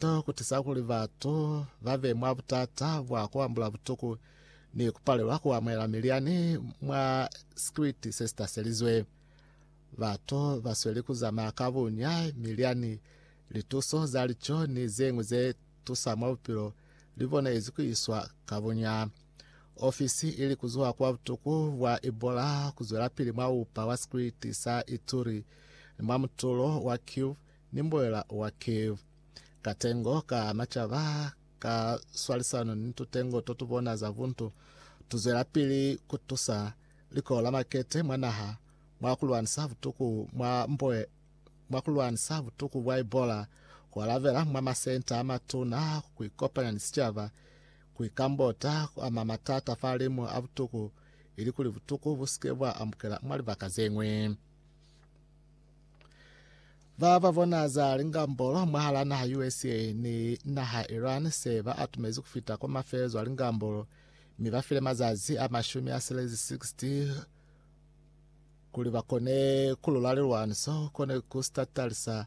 to kutiza kuli batu babe mwa butata bwa kuambula butuku ni kupalelwa kuamuhela milyani mwa sikiliti sesitaselizwe. Batu basweli kuzamaya ka bunya milyani, lituso za lico ni zeñwi ze tusa mwa bupilo libone ezi kuiswa ka bunya. Ofisi ili kuzuha kwa butuku bwa Ebola kuzwelapili mwa upa wa sikiliti sa Ituri ni mwa mutulo wa Kivu ni mboela wa Kiev. Katengo ka na caba ka swalisano ni tutengo to tubona za buntu, tuzwelapili kutusa likolo la makete mwa naha mwa kulwanisa butuku mwa mboe mwa kulwanisa butuku bwa Ebola, kualabela mwa masenta amatuna, kuikopanya ni sicaba, kuikambota, kuama matata fa limu a butuku, ilikuli butuku busike bwa ambukela mwa libaka zeñwi. Ba ba bona za lingambolo mwahala naha USA ni naha Iran se ba atumezi kufita kwa mafelezo a lingambolo mi ba file mazazi a mashumi a selezi 60 kuli ba kone kulula lilwaniso kone ku statalisa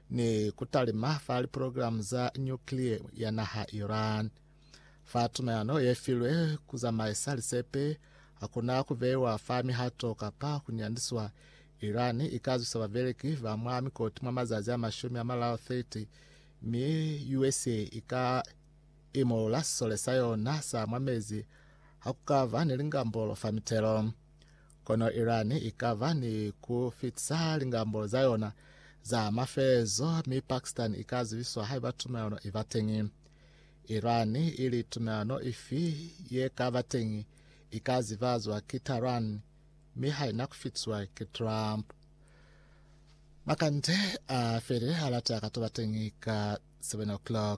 ni ku talima fa liprogilamu za nyuklia ya naha Iran. Fa tumayano ye filwe ku zamaisa lisepe, ha ku na ku beiwa fa mihato kapa ku nyandiswa. Iran i ka zwisa babeleki ba mwa mikoti mwa mazazi a mashumi a malalu 30, mi USA i ka imolola sisole sa yona sa mwa mezi ha ku ka ba ni lingambolo fa mitelo. Kono Iran i ka ba ni ku fitisa lingambolo za yona za mafelezo, mi Pakistan i ka zibiswa haiba tumelano i ba teñi. Iran i li tumelano ifi ye ka ba teñi i ka zibazwa ki Tehran, mi ha i na ku fitiswa ki Trump. Makande a felile ha lata ka to ba teñi ka 7:00.